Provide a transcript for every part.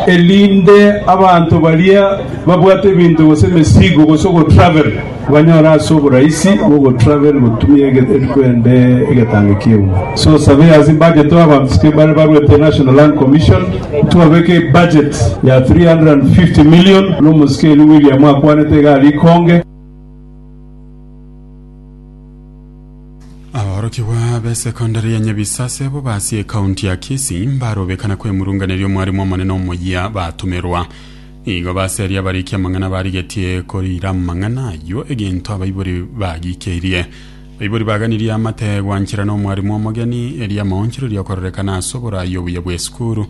erinde abanto baria babwate ebinto gose emesigo gose ogotravel banyore ase oborahisi bw'ogotravel gotumia ege- eriko ende egetango ki'euma so sabe ase budget aba abamsike bare barwete national land commission twabeke budget ya 350 million n'omosike eri william akwanete iga rikonge Aborokigwa b'esekondari ya Nyabisa asebo basi ekaunti ya Kisii mbarobekana kwemurunganeria omwarimu omonene omoyia batumerwa. Igo baseria abariki amang'ana barigetie korira amang'ana ayio egento abaibori bagikeirie. Baibori baganirie amate gwanchera n'omwarimu omogeni eria amaonchoreria okororekana ase oborayi obuya bw'esukuru.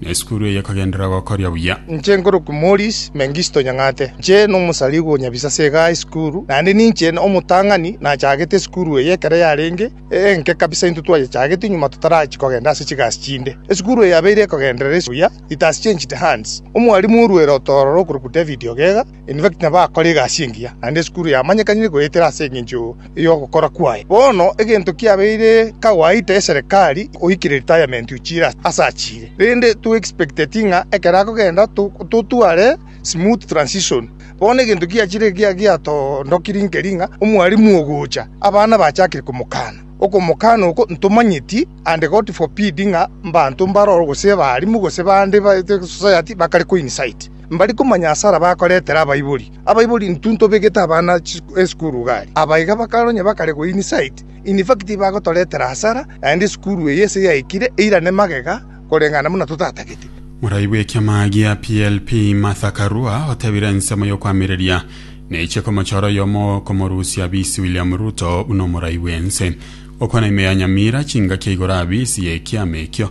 Na esukuru eye ekagenderera gokoria buya. Inche nkorokwa Maurice Mengisto Nyang'ate. Inche nomosarigwa o Nyabisase igaa esukuru, naende ninche omotang'ani nachagete esukuru eye ekero yarenge enke kabisa intwe twayechagete nyuma totarachia kogenda ase chigasi chinde. Esukuru eye yabeire ekogenderera buya ritasi changed hands. Omwarimu orwere otororo okorokwa David Ogega, In fact, nabakore egasi engiya, naende esukuru yamanyekanire goetera ase engencho y'ogokora kwaye. Bono egento kiabeire kawaita eserekari goikire retirement ochire ase achire, rende to expecteti ng'a ekero akogenda totware smooth transition. Bono egento kiachire ekiya giatondokirie nkeri ng'a omwarimu ogocha, abana bachakire komokana. Okomokana oko ntomanyeti and God forbid ng'a mbanto mbaroro gose abarimu gose bande society bakare koincite. Mbari komanya hasara bakoretera abaibori. Abaibori intwe ntobegete abana esukuru igare. Aba iga bakare onye bakare goyia insight. In fact bagotoretera hasara naende esukuru eye ase yaikire eirane magega koreng'ana buna totatagete. Morai bw'ekiama gia PLP Martha Karua otebire ensemo y'okoamereria neiche komochora oyomo okomorusia bisi William Ruto buna omorai bw'ense. Okwana ime ya Nyamira chingaki ya igoro abisi y'ekiama ekio.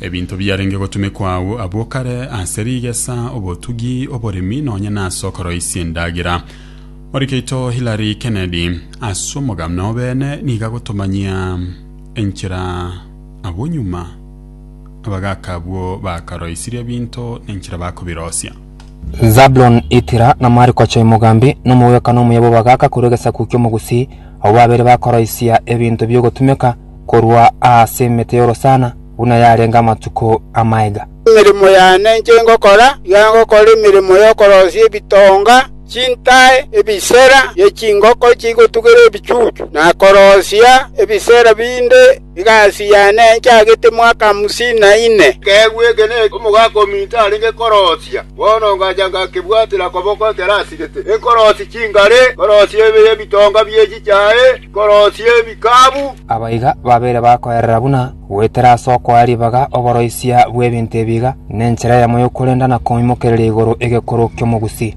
Ebinto biarenge gotumekwa agwo abwo kare, ase rigesa, obotugi, oboremi, nonya nase okoroisia endagera. Morikeito Hillary Kennedy, ase omogano nobene, nigo agotomanyia enchera abwo nyuma abagaaka abwo bakaroisirie ebinto na enchera bakobirosia. Zabuloni Itira na Marikocho Imogambi, na omogwekano omuya bw'abagaaka korwa egesaku ki'Omogusii, abwo babere bakoroisia ebinto bi'ogotumeka korwa aase emete y'orosana, buna yarenge amatuko a maega. Emeremo yane enche ngokora, iga ngokora emeremo y'okoroisia ebitonga, chintae, ebisera bie chingoko chigotugerwa ebichuchu, na koroisia ebisera binde Egasi yane nchagete mwaka hamsini na ine. Ekeegwa eke n'omogaka ominto arenge koroosia. Bono ngacha ngakebwatera koboko ekero asigete. Nkoroosie chingare, nkoroosie ebitonga bie chichae, nkoroosie ebikabu. Aba iga babeire bakoerera buna goetera ase okoa ribaga oboroisia bw'ebinto ebi iga, nenchera eyemo y'okorenda na koimokereria igoro egekuru ki'omogusi.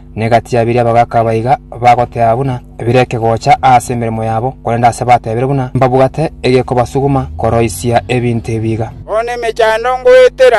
na egati ya biria bagaka baiga bagoteba buna bire ekegocha ase emeremo yabo, korende aase batebire buna mbabwate egekobasuguma koroisia ebinto ebi iga. Bono emechando ngoetera